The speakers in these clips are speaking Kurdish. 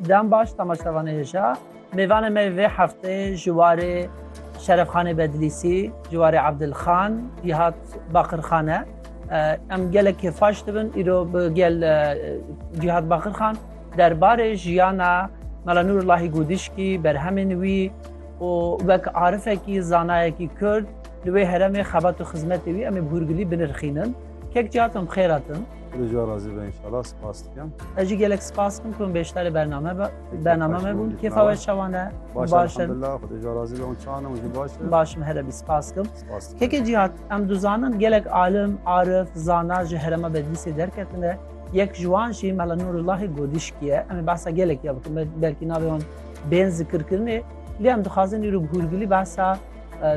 Dem baş temaşevanê hêja. Mêvanê me yê vê hefteyê ji warê Şerefxanê Bedlîsî, ji warê Ebdilxan, Cîhat Baqirxan e. Em gelek kêfxweş dibin îro bi gel Cîhat Baqirxan derbarê jiyana Mela Nûrullahî Gûdişkî, berhemên wî û wek arifekî, zanayekî Kurd li wê heremê xebat û xizmetê wî em ê bi hûrgilî binirxînin. Kek ciyatim xêr hatin. Li jî razî be inşallah spas dikim. Ez jî gelek spas dikim ku beşdarê bername be bername me bûn. Kêfa we çawan e? Baş e. Elhamdulillah xwedê jî razî be û çawan e û jî baş e. Baş im here bî spas dikim. Spas dikim. Kekê cihat em dizanin gelek alim, arif, zana ji herema Bedlîsê derketine. Yek ji wan jî Mela Nûrullahê Godîşkî ye. Em ê behsa gelekî ya bikin belkî navê wan bên zikirkirinê. Lê em dixwazin îro bi hûrgilî behsa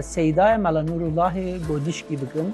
Seydaya Mela Nûrullahê Godîşkî bikin.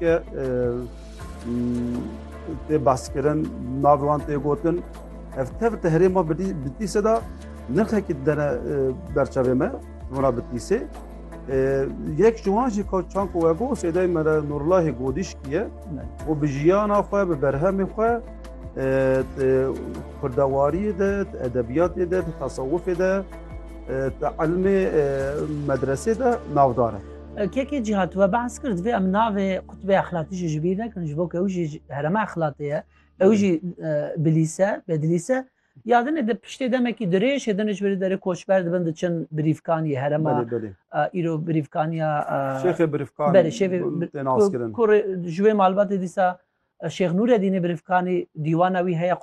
Ke tê baskirin navê wan tê gotin ev tev te herê ma bitîse da nirxekî dene berçavê me hona bitîsê yek ji wan jî çan ku we got sêdey me re nurlahê godîşkiye û bi jiyana xwe bi berhemê xwe kurdewariyê de edebiyatê de tasawufê de te elmê medresê de navdar e Kekê cîhat we behs kir divê em navê qutbê exlatî jî ji bîr nekin ji bo ke ew jî herema exlatê ye ew jî bilîse bedilîse ya dinê di piştê demekî dirêj hêdin ji birî derê koçber dibin diçin birîvkanî herema îro birîvkaniya şêxê birîvkan berê şêfê kurê ji wê malbatê dîsa Şêx Nûredînê birîvkanî dîwana wî heye qut